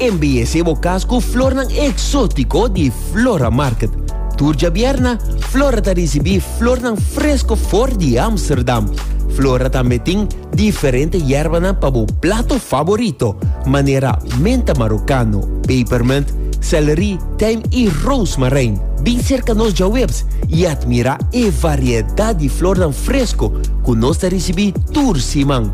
Embeyesé bo kas ku flornan eksótiko di Flora Market. Tur djabièrna, Flora ta risibí flornan fresko for di Ámsterdam. Flora tambe tin diferente yèrbanan pa bo plato faborito, manera menta marokano, pepermint, sèlri, tijm i roosmarijn. Bin serka nos djawebs i atmirá e variedat di flornan fresko ku nos ta risibí tur siman.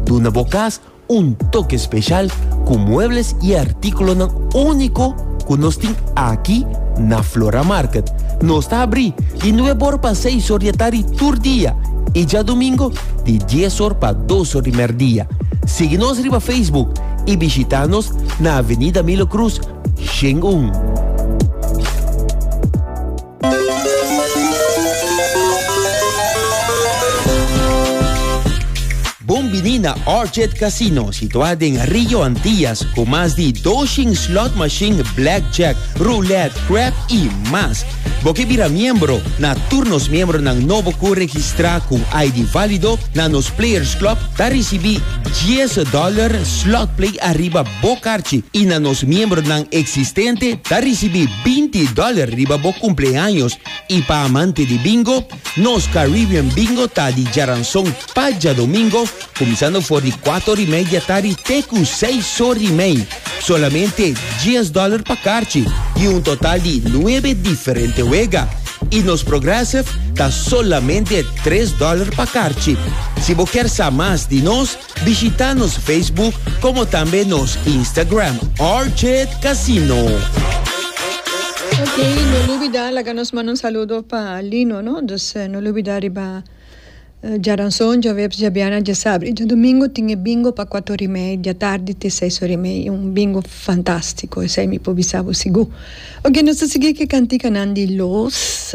Duna bo kas Un toke speshal ku muebles i artíkulonan úniko ku nos tin aki na Flora Market. Nos ta abrí di nuebe or pa seis or di e tardi tur dia i djadumingu di dies or pa dos or di mèrdia. Sigui nos riba Facebook i bishitá nos na Avenida Milo Cruz, Shen un. Bon bini na Orchid Casino, situá den Rio Antillas, ku mas di doshin slot machine, blackjack, roulette, crab i mas. Bo ke bira miembro na tur nos miembronan nobo ku registrá ku ID válido na nos Players Club ta risibí 10 dólar slot play ariba Bo karchi i na nos miembronan eksistente ta risibí binti dòler riba bo kumpleaños i pa amante di bingo, nos Caribbean Bingo ta di djaranson pa djadomingo kuminsando for di kuator i media tari te ku seis sor i mei. Solamente dies dòler pa karchi i un total di nuebe diferente wega. I nos Progressive ta solamente tres dòler pa karchi. Si bo kier sa mas di nos. Bishita nos Facebook como tambe nos Instagram Orchid Casino. Ok, no lubida laga nos manda un saludo pa Lino, no? Dus eh, no lubida riba eh, Jaranson, Jaweps, Jabiana, Jasabri. Jadomingo tin e bingo pa cuatro ori mei dia tardi te seis ori mei. Un bingo fantastico, esei mi por bisa bo sigu. Ok, nos ta sigui ke canticanan di los.